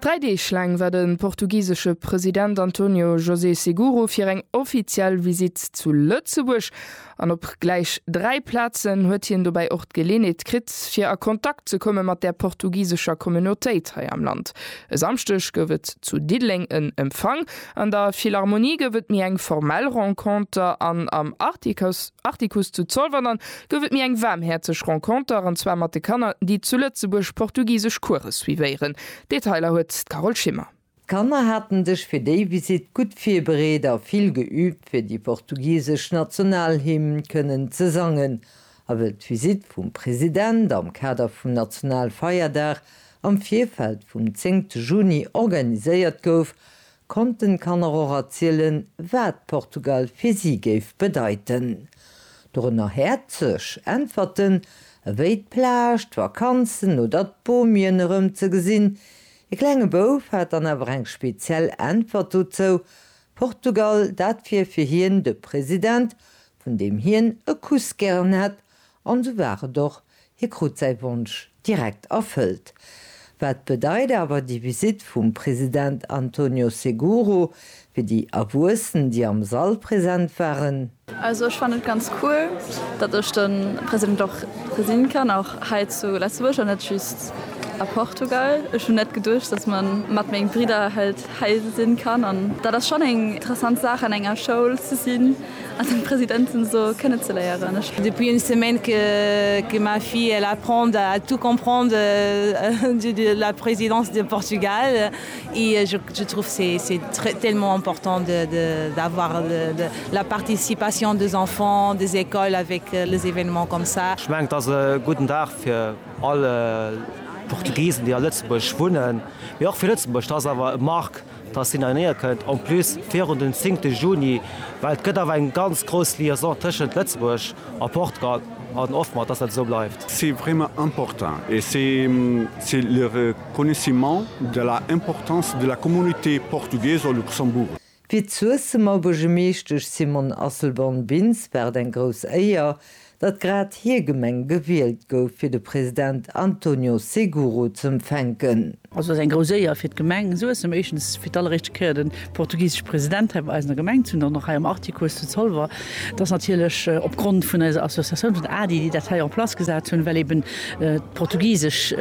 Dräi Deeg laang war de portugisesche President António José Seguro fir eng offiziell Visitt zu Lëtzebuerg an op gläich dräi Plazen huet hien dobäi och d'Geleeënheet kritt, fir a Kontakt ze komme mat der portugisescher Communautéit hei am Land. E Samschdeg gouf et zu Diddeleng en Empfang, an der Philharmonie gouf et méi eng formell Renconter an am Artikuss zu Zolwer dann gouf et mir eng waarmhäerzeg Renconter, an zwar mat de Kanner, déi zu Lëtzebuerg portugisesch Course suivéieren. D'Detailer huet d'Carole Schimmer. D'Kanner haten sech fir déi Visitt gutt virbereet a vill geüübt, fir déi portugisesch Nationalhymn kënnen ze sangen. A wëll d'Visitt vum President am Kader vum Nationalfeierdag am Virfeld vum zéngte Juni organiséiert gouf, Konnten d'Kanner och erzielen, wat Portugal fir si géif bedeiten. Dorënner häerzeg Äntwerten ewéi d'Plage, d'Vakanzen oder d'Bomien erëm ze gesinn. E klenge Bouf hat dann awer eng speziell Äntwert dozou, Portugal, dat wier fir hien de President, vun deem hien e Kuss gären hätt, An sou war et och, hie krut säi Wonsch direkt erfëllt. Wat bedeit awer déi Visitt vum President Antonio Seguro fir déi Erwuessen, déi am Sall present waren? Also ech fannen et ganz cool, datt ech de President och gesinn kann, och hei zu Lëtzebuerg an net just a Portugal. Ech hunn net geduecht, datt mer mat meng Bridder hei hei sinn kann an dat ass schonn eng interessant Saach an enger Schoul ze sinn an den Presidenten esou kënne ze léieren. Ech. Depuis une semaine que que ma fille elle apprend à tout comprendre de de la présidence de Portugal et je je trouve c'est c'est très tellement important de de d'avoir de de la participation des enfants des écoles avec les événements comme ça. Ech mengen et ass e gudden Dag fir. All Portugisen déi a Lëtzebuerg wunnen, mee och fir Lëtzebuerg, dat ass awer e Marque, dass deen hei néier kënnt, en plus virun den zingte Juni, well et gëtt awer eng ganz grouss Liaison tëschent Lëtzebuerg a Portugal an hoffen mer, dass dat esou bleift. C'est vraiment important et c'est le reconnaissement de la importance de la communauté portugaise au Luxembourg. Fir d'Suessemer Buergermeeschtesch Simone Asselborn-Bintz war et eng grouss Éier, datt grad hir Gemeng gewielt gouf, fir de President Antonio Seguro z'empfänken. Also ass eng grouss Éier fir d'Gemeng Suessem, éischtens fir d'alleréischte Kéier de portugisesche President hei bei eis an der Gemeng ze hunn, dann och hei am Artikuss zu Zolwer. Et ass natierlech op Grond vun eiser Associatioun, vun ADDI, déi dat hei en place gesat hunn, well eben d'portugisesch.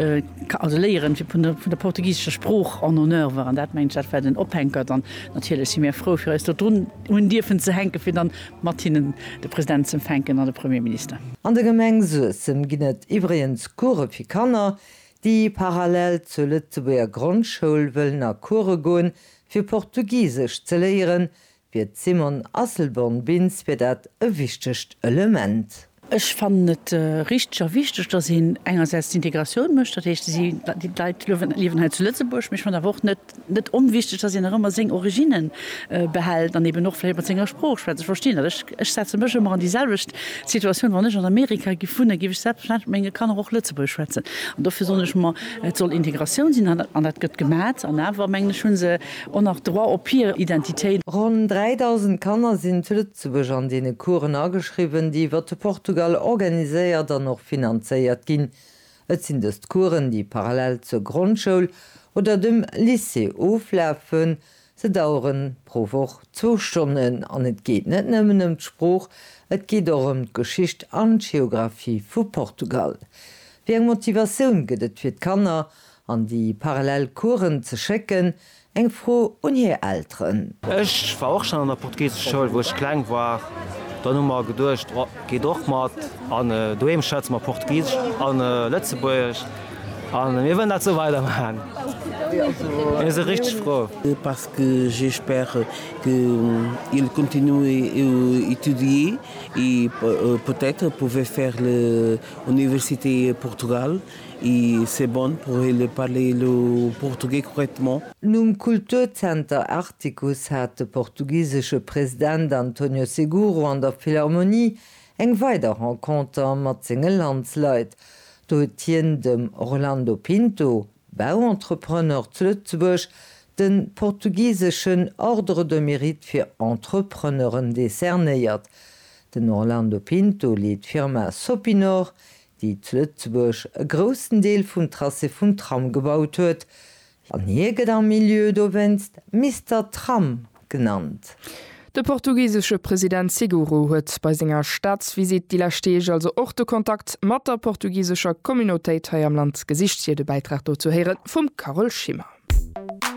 also léieren vun der portugisescher Sprooch en honneur war an dat mengen ech dat war den Ophänker. Dann natierlech si mir frou fir eis do drun hunn dierfen ze hänke fir dann mat hinnen de President z'empfänken an de Premierminister. An der Gemeng Suessem ginn et iwwregens Course fir Kanner, déi parallel zur Lëtzebuerger Grondschoul wëllen a Course goen, fir Portugisesch ze léieren, Fir d'Simone Asselborn-Bintz wier dat e wichtegt Element. Ech fannen et richteg a wichteg, datt een engersäits d'Integratioun mécht, dat heescht, déi Leit liewen hei zu Lëtzebuerg, mee ech fannen awer och net onwichteg, datt een nach ëmmer seng Originne behält an eben och vläicht mat senger Sprooch schwätzt. Ech verstinn dat, ech setze mech ëmmer an déi selwecht Situatioun, wann ech an Amerika giff wunnen, giff ech selbstverständlech mat menge Kanner och Lëtzebuergesch schwätzen an dofir soen ech mer, et soll Integratioun sinn an dat gëtt gemat an awer mengen ech, hu se, En nach Droit op hier Identitéit. Ronn 3.000 Kanner sinn zu Lëtzebuerg an deene Coursen ageschriwwen, déi iwwer de Portugal organiséiert an och finanzéiert ginn. Et sinn dëst Coursen, déi parallel zur Grondschoul oder dem Lycée oflafen. Se daueren pro Woch zwou Stonnen an et geet net nëmmen ëm d'Sprooch, et geet och ëm d'Geschicht an d'Geographie vu Portugal. Wéi eng Motivatioun gëtt et fir d'Kanner An déi parallel Coursen ze schécken? Eng Fro un hir Elteren. Ech war och schon an der portugisesch Schoul wou ech kleng war, dann hu mer geduecht oh geet och mat an doheem schwätze mer portugisesch an lëtzebuergesch an mir wëllen dat sou weider maan, mir si richteg frou. Parce que j'espère que il continue à étudier et peut-être pouvait faire l'université Portugal. I c'est bon pour il parler le portugais correctement. Nom Kulturzenter Artikuss hat de portugisesche President António Seguro an der Philharmonie eng weider Renconter mat senge Landsleit. Do huet hien dem Orlando Pinto, Bauentrepreneur zu Lëtzebuerg, de portugiseschen Ordre de Mérite fir Entrepreneuren decernéiert. Den Orlando Pinto leet d'Firma Sopinor, déi zu Lëtzebuerg e groussen Deel vum Tracé vum Tram gebaut huet, an hie gëtt am Milieu dowéinst Mister Tram genannt. De portugisesche President Seguro huet bei senger Staatsvisitt déi lescht Deeg also och de Kontakt mat der portugisescher Communautéit hei am Land gesicht, hir de Bäitrag dozou héiere vum Carole Schimmer.